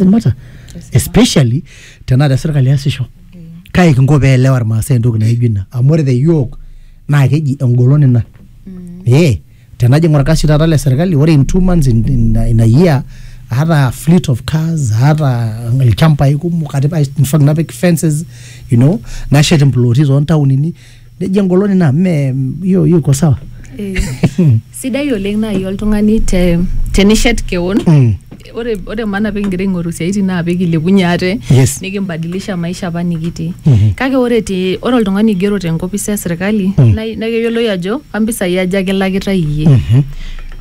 doesn't matter especially tenaata serkali easisho kae kinko pee elewa irmaasai entoki naijo ina amu ore te yiok naa keji engolon ina ee tenajing orkasi taata le serkali ore in two months in, in, in a year aata fleet of cars aata ilchambai kumok atipika in fact napik fences you know nashet imploti toontaonini nejo engoloni naa mme hiyo hiyo iko sawa Eh, sidai oleng naaji oltung'ani te tenishet kewon Mm. ore ore maana pikigira aing'oru siaitin naa pikilepunye ate Yes. nikimbadilisha maisha apa nikitii Mhm. kake ore te ore oltung'ani oigero tenkopis esirkali Mm. naa naa keyioloi ajo kampisai aja kilakitae iyie Mhm.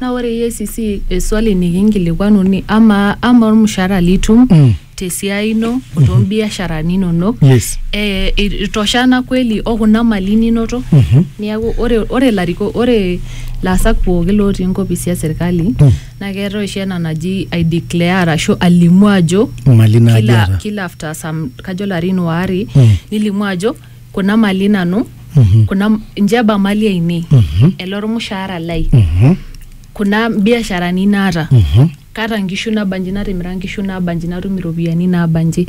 naa ore EACC eswali nikinkilikuanu ni ama ama ormushaara litum Mm. tesiai ino o toombiasharani inonok yes eh, itoshana kweli o kuna mali ninoto Mhm. niaku ore ore lariko ore laasak pooki lootii nkopisi e serkali Mm. naa keetae oshi ena naji i declare arashu alimu ajo mali naaji kila, eeta kila after some kajo larin waare Mm. nilimu ajo kuna mali nanu Mhm. kuna njeba mali ainei Mhm. ele ormushaara lai Mhm. kuna biasharani naata Mhm. kaata nkishu nabanji natimira nkishu nabanji natum iropiyiani nabanji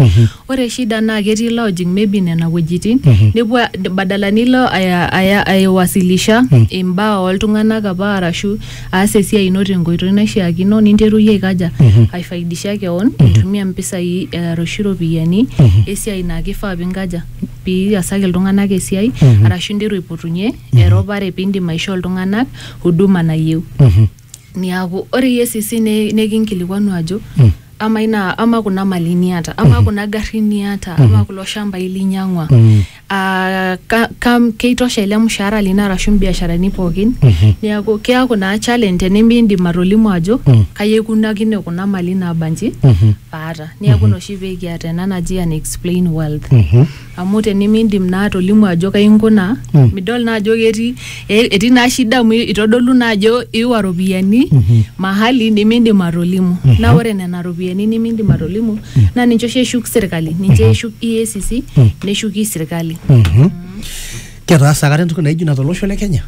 ore shida naa ketii lojing maybe nena wuejitin nepuo a- badala nilo aya- aya- aiwasilisha imbaa oltung'anak apa arashu aas esiai ino tenkoitoi naishiakino ninteru iyie aikaja aifaidisha keon intumia mpisai eh, arashu iropiyiani esiai naa kifaa pinkaja piasaki iltung'anak esiai arashu interu aipotunye eropare pindim aishoo iltung'anak huduma nayieu niaku ore EACC ne- nekinkilikuanu ajo ama ina ama kuna mali niata ama kuna garrin niata ama kulo shambai linyang'ua Ah, ka, ka, keitosha ele mshahara lino arashu mbiasharani pookin niaku keaku naa challenge tenimiindim atolimu ajo kai aikunakine kuna mali naabanji paata niaku ina oshi pekiata ena naji an explain wealth amu tenimiindim naa atolimu ajo kai inkunaa Mm. midol naa ajo ketii e- etii naa shida amu itodolu naa ajo iwa ropiyiani Mhm. mahali nimiindim atolimu naa ore nena ropiyiani nimiindim atolimu naa ninche oshi eshuk sirkali ninche eshuk EACC Mm. neshuki sirkali Mhm. Ketaasa akata entoki naijo ina tolosho le Kenya?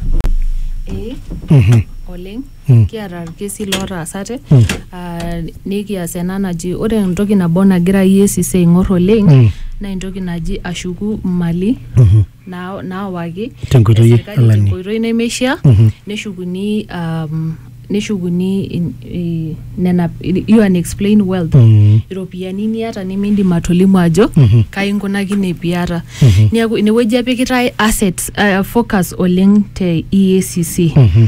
Eh, Mhm. oleng Mm. kiata irkesi lootaasate Mm. ah, nikias ena naji ore entoki nabo nagira EACC aing'or oleng Mm. naa entoki naji ashuku mali Mhm. naa- naawaki Tenkoitoi e serikali alani. tenkoitoi nemeishaa Mhm. neshukuni um, neshukuni in- i- nena you and explain wealth Mm. iropiyiani niata nimindim atolimu ajo Mhm. kai inkunakine piata Mhm. neeku inewueji epikitae assets uh, focus oleng te EACC Mhm.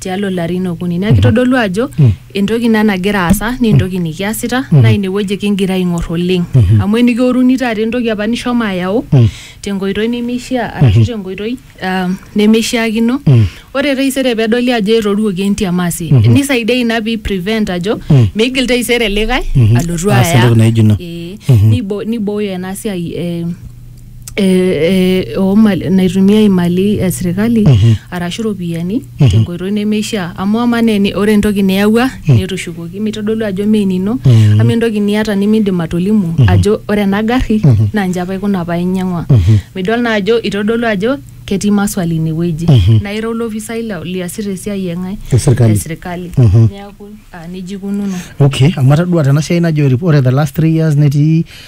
tialo larin okuni neaku kitodolu ajo entoki ina nagira aasa naa entoki nikiasita naa inewueji kingira aing'or oleng amu enikioruni taata entoki apa nishomo ayau tenkoitoi nemeishia arashu tenkoitoi um, nemeishiakino ore taisere pedoli ajo etoruoki entiamasi nisaidia ina pi prevent ajo meigil taisere likae alotu Aas aya entoki naijo ina. Eh, nibo- nibooyo ena siai eh, eh, eh, oo mali- naitumia imali e sirkali arashu iropiyiani tenkoitoi nemeishaa amu ama naa eni- ore entoki niyawua netushukoki mitodolu ajo mee enino ama entoki niata nimindim atolimu ajo ore ena garri naa nche apa ikuna apa inyang'ua midol naa ajo itodolu ajo ketii maswali inewueji naa ira olopisai la- liasita esiai eng'ae E sirkali. e sirkali neeku ah, nejia ikununo okay amu atadua tena siai najo rip- ore the last three years netii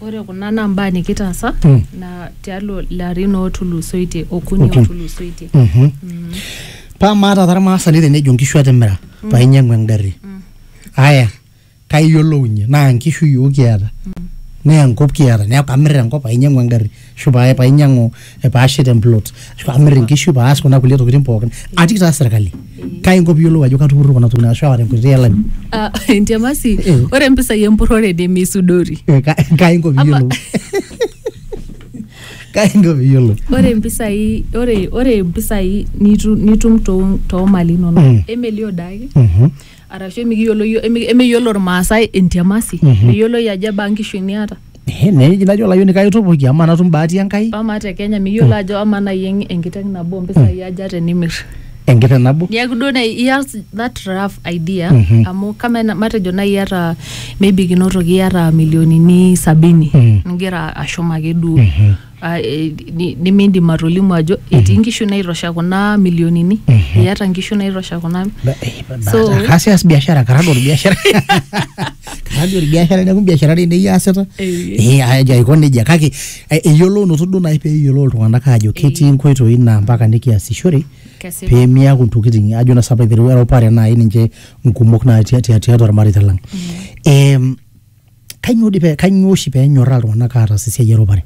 Ore kuna naa mbaa nikitaasa Mm. na tialo larin otulusoitie okuni Okuni. otulusoitie. Mhm. paa maata taa irmaasani tenejo nkishu atimira paa inyiang'u engarri aya kaiyiolounye naa nkishu yiok kiata naa enkop kiata neeku kamir enkop paa inyiang'u engarri ashu pae painyiang'u eh, paashet emplot ashu pamir inkishu paas kuna kulie tokitin pookin atii taa serkali kai inko piyiolou ajo katupurro kuna tokitin ashu aata enkoitoi elani Ah, entiamasi Eh. ore mpisai empurrore nemeisudori Eh, ka- kai inko Ama- piyiolou kai inko piyiolou ore mpisai ore ore mpisai nitu- nitum too- toomali inonok Mm. emelio daake Mhm. arashu emikiyiolo yio- emi- emeyiolo irmaasai entiamasi meyioloi ajo ebaa nkishu niata Eh, neji najo olayioni kaitupuki amaa natum bahati enkai amaa te kenya miyiolo ajo amaa nai eng- enkiteng nabo mpisai aja tenimir enkiteng nabo niaku duo nai iyas that rough idea Mhm. amu kama na- matejo nai iyata maybe kinotoki iyata milionini sabini Mhm. nigira ashum ake duo Mhm. Ah, eh, ni- nimiindim atolimu ajo etii nkishu naitosha kuna milionini iata nkishu naitosha kuna Ba- eh, ba- ba- So- kaas eas biashara karagol biashara karagol biashara neeku biashara dei nei aasita Eh. Eh, ajo aiko nejia kake eh, eyiolounoto duo naaji pee eyiolou iltung'anak aajo ketii nkoitoi naa mpaka nikiasishore Kesipa. pee miaku ntokitin ajo na sapa aiteru eropare naaji ninche nkumok naa tia- tia- tiatua irmareita lang Em, kainyoo dii pee kainyoo oshi pee enyorraa iltung'anak aatas esiai eropare?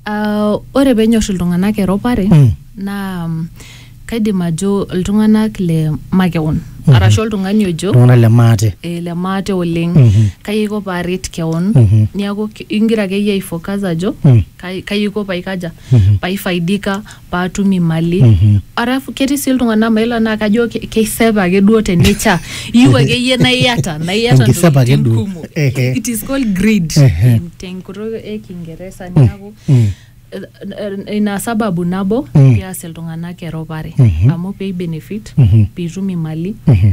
Ah, ore penyor iltung'anak eropare Mm. naa mm, kaidim ajo iltung'anak le makeon Mhm. arashu oltung'ani ojo Iltung'anak le maate. eh, le maate oleng Mhm. kai aiko paaret keon Mhm. niaku ki- ingira akeyie aifocus ajo Mm. kai kai aiko paikaja Mhm. paifaidika paatum imali arafu ketii sii iltung'anak mailo naa kajo ke- keisep ake duo te nature iyieu akeyie naa iyata naa iyata Enkisep ake ntokitin duo. kumok Ehe. it is called greed Ehe. in- tenkutuk e kingeresa neaku Mm. eh, eh, ina sababu nabo Mm. peas iltung'anak eropare Mhm. amu pei benefit Mhm. piitum imali Mhm.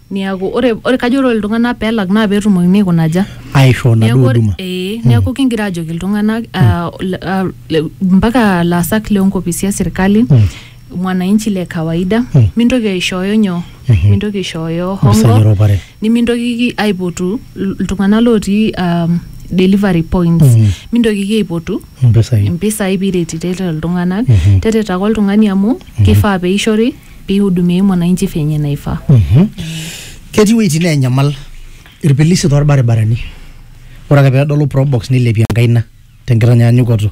Niaku ore ore kajo ore iltung'anak pelak naa petumokini aikuna aja? aishoo Niaku naduo ore- huduma ee, niaku kingira ajoki iltung'anak ah, le- ah, le- mpaka laasak loonkopisi esirkali Mm. mwananchi le kawaida Mm. mintoki aishooyo nyoo Mhm. mintoki aishooyo mpisai hongo eropare nimintokiki aipotu il- iltung'anak lotii um, delivery points Mhm. mintokiki aipotu mpisai impisai piretitete iltung'anak Mhm. teretaka oltung'ani amu kifaa peishori pihudumiai mwananchi venye naifaa. Ketii wueitin neenyamal irpilisi torbaribarani. Ore ake pedolu probox nilepie enkaina tenkitanyanyukoto.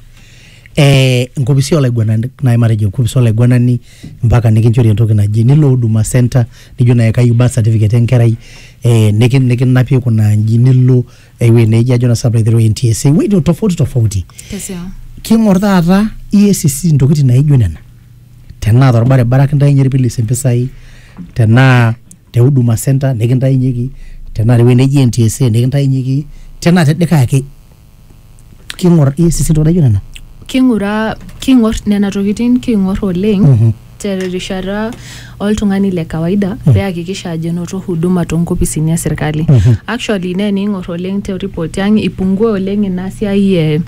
Eh, inkopisi olaiguanani nai matejo enkopis olaiguanani mpaka nikinchori entoki naji nilo huduma centre nijo nai kayieu birth certificate enkerai eh, nikinapie kuna aji nilo ewuei neji ajo nasa aiteru NTSA ewueji tofauti tofauti Kesiaa. king'or taata EACC intokitin naijo nena tenaa torbaribara kintainye irpilis impisai tenaa te huduma center nikintainyeki tenaa tewuei neji NTSA nikintainyeki tenaa te likae ake king'or iyie sisi ntokitin naijo nena king'ura king'or nena tokitin king'or oleng Mhm. terishata oltung'ani le kawaida pee eakikisha ajo enoto huduma toonkopisini e serkali Mhm. actually naa ening'or oleng te report ang ipungua oleng ina siai e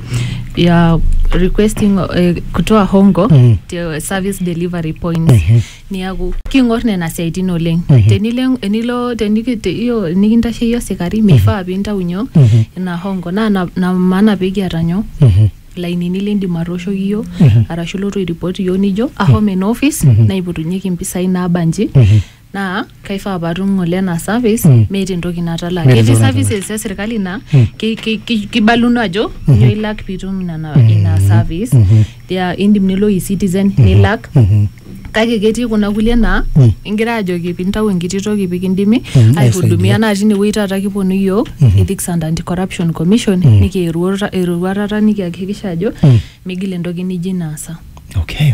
ya requesting eh, kutoa hongo Mhm. te service delivery points Mhm. niaku king'or nena siaitin oleng tenilo enilo teniki- te- iyo nikintasheyie osikari meifaa pintau nyoo Mhm. ina hongo naa na- na maana pekiata nyoo Mhm. lainini lindim atooshoki iyiok Mhm. arashu ilotu airipot iyiok nijo ahomo ena office Mhm. naipotunyeki impisai naabanji Mhm. naa kaifaa patum ng'ole ena service Mm. meeta entoki natalaa Meeta ketii entoki natalaa. services e serkali naa Mm. ki- ki- ki- kibaluno ajo nyoo ilak piitum nena ina service Mhm. ya indim nilo e-citizen nilak Mhm. kake ketii kuna kulie naa Mm. ingira ajoki pintau enkiti toki pikindimi Mm, aihudumia aisaidia. naa tinewueji taata kiponu yiok Mhm. ethics and anti corruption commission Mm. nikieruata eroruatata nikiakikisha ajo Mm. migil entoki nijo inaasa Okay.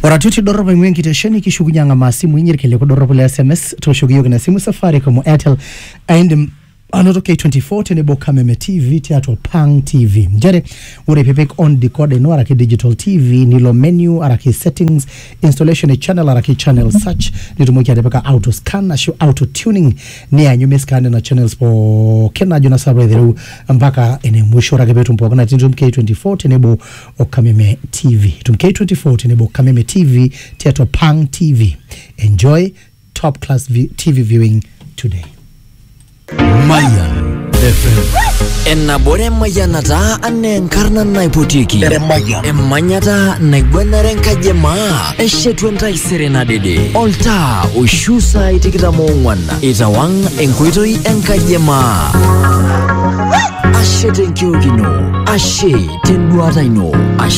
Oratioti dorrop aing'ua enkitesheni kishukunye ang'amaa simui inyi irkiliku dorropu le SMS tooshoki iyiook ina simu Safaricom o Airtel aindim anoto K24 tenebo Kameme TV tiatua Pang TV nchere ore pipik on decoder ino araki digital TV nilo menu araki settings installation e channel araki channel search nitumoki atipika auto scan ashu auto tuning nianyu miscan nena channels pookin najo na sapa aitereu mpaka ene musho ore ake petum pookin atitum K24 tenebo Okameme TV. Tumkei 24 tenebo Okameme TV tiatua Pang TV. Enjoy top class vi- TV viewing today. Mayan FM. Ennabore emayianata anaa enkarna naipotieki emanyata naiguanare enkaji e maa eshetu entaisere nadede oltaa oishu saai tikitam oong'wan Itawang enkoitoi enkajemaa. Ashe tenkiok ino, ashe tenduata ino, ashe